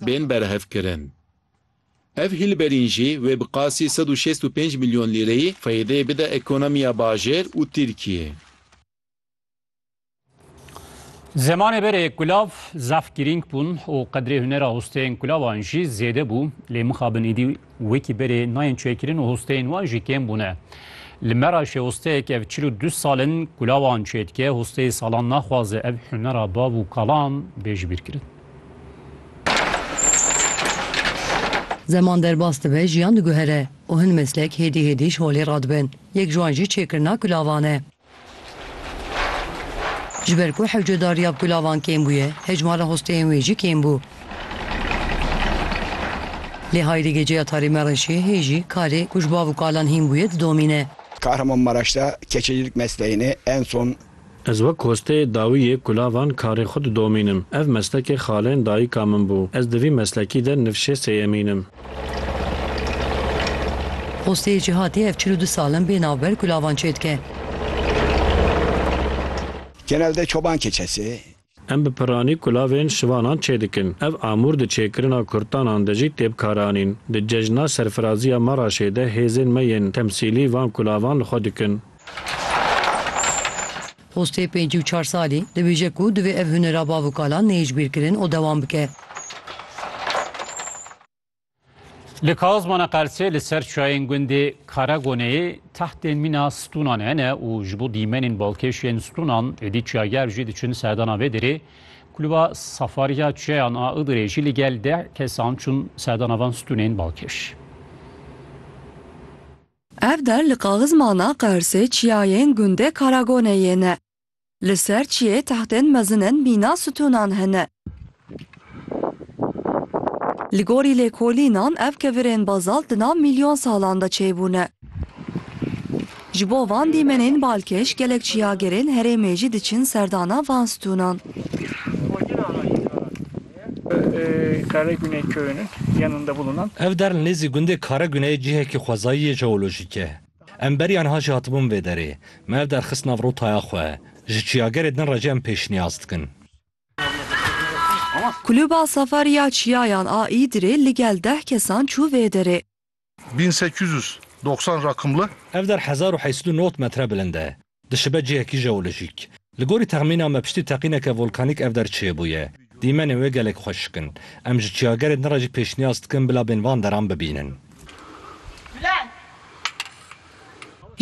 bên berhevkirin. Ev hîlberîn jî wê bi qasî sed û şêst û pênc milyon lîreyî feydê bide ekonomiya bajêr û Tirkiyê. Zemanê berê kulav zaf girîng bûn û qedrê hunera hosteyên kulavan jî zêde bû. Lê mixabin îdî wekî berê nayên çêkirin û hosteyên wan jî kêm bûne. Li Meraşê hosteyek ev çil û du sal in kulavan çêdike, hosteyê salan naxwaze ev hunera bav û kalan bê jibîrkirin. Zeman derbas dibe, jiyan diguhere û hin meslek hêdî hêdî ji holê radibin. Yek ji wan jî çêkirina kulavan e. Ji ber ku hewcedariya bi kulavan kêm bûye, hejmara hosteyên wê jî kêm bû. Lê Hayrî geceya tarî mereşê, hêjî, karê ku ji bav û kalan hîn bûye didomîne. Kahramanmaraş'da keçecîlik mesleğini en son. Ez wek kosteyê dawî yê kulavan karê xwe didomînim. Ev meslekê xaleyên dayîka min bû. Ez di vî meslekî de nifşê sêyemîn im. Kosteyê Cîhatî ev çil û du sal in bê navber kulavan çêdike. Genelde çoban keçesi Em bi piranî kulavên şivanan çêdikin. Ev amûr di çêkirina kurtanan de jî tê bikaranîn. Di cejna serfirazî ya Maraşê de hêzên me yên temsîlî van kulavan li xwe dikin. Postê pêncî û çar salî, dibêje ku divê ev hunera bav û kalan neyê ji bîr kirin û dewam bike. Li Kazmana Qersê li ser çayên gundê Karagoneyê tehtên mîna stûnan hene û ji bo dîmenên balkêşên stûnan êdî çager jî diçin serdana vê derê. Kulûba Safariya Çayan a Idirê jî li gel deh kesan çûn serdana van stûnên balkêş. Ev der li Kazmana Qersê çiyayên gundê Karagoneyê ne. Li ser çiyê tahtên mezin in mîna stûnan hene. Li gorî lêkolînan ev kevirên bazalt di nav mîlyon salan de çêbûne. Ji bo van dîmenên balkêş gelek çiyagerên herêmê jî diçin serdana van stûnan. Ev der li nêzî gundê Karegune yê cihekî xwezayî yê jeolojîk e. Em beriya niha jî hatibûn vê derê. Me ev der xist nav rotaya xwe. Ji çiyagerê din re jî em pêşniyaz dikin. Kulûba Safariya Çiyayan a Îdirê ligel deh kesan çû vê derê. Bin sekiz yüz doxsan rakımlı. Ev der hezar û heysed û nod metre bilind e. Dişibe cihekî jeolojîk. Li gorî texmîna me piştî teqîneke volkanîk ev der çêbûye. Dîmenên wê gelek xweşik in. Em ji çiyagerên din re jî pêşniyaz dikin bila bên van deran bibînin.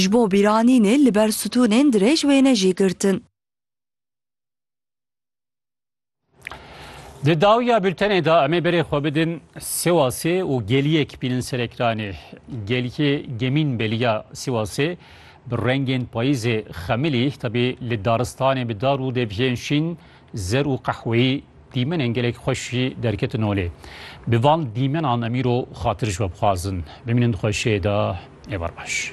Ji bo bîranînê li ber stûnên dirêj wêne jî girtin. Di dawiya bültenê de em ê berê xwe bidin Sêwasê û geliyek bînin serekranê. Gelkê Gemîn Beliya Sêwasê bi rengên payîzê xemilî tebî li daristanê bi dar û devjên şîn, zer û qehweyî dîmenên gelek xweş jî derketin holê. Bi van dîmenan em îro xatir ji we bixwazin. Bimînin di xweşiyê de ê berbaş.